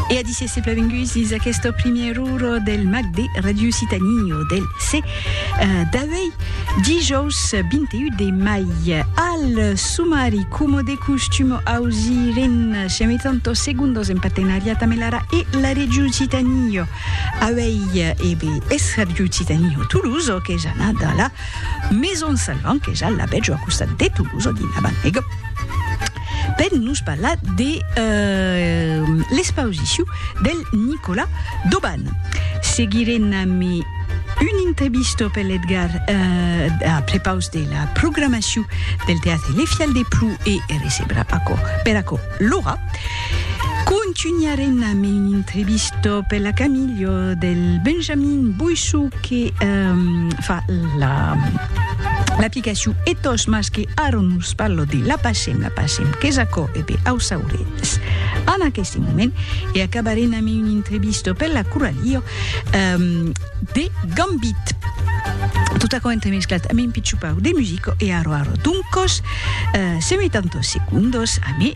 E a disse se plavengus dis aquest primièr uro del mag de Radio Citanio del C. Eh, d'avei dijous 21 de mai. Al sumari, como de costumo, ausiren siami tanto segundos en partenariat amb l'ara e la Radio Citanio. Avei, ebe, es Radio Citanio Toulouse, que ja n'a da la Maison Salvant, que ja la veig a costat de Toulouse, dinabant, ego. per nos parlar de l'expausiciu del Nicolas Doban. Seguirem amb un entrevista per l'Edgar a prepaus de la programaciu del Teatre Le Fial de Plou e recebra aquò, per aquò Laura. Contunharem amb un entrevista per la Camilha del Benjamin Boissou que fa l'aplicaciu Ethos Mas Que ara nos parlo de l'apacem, l'apacem, qu'es aquò? E ben, au sauretz en aqueste moment, e acabarem amb una entrevista per la Coralio de Gambit. Tot aquò entremesclat amb un pitjopau de musica, e ara, ara, doncos, se metan dos segundos, amé.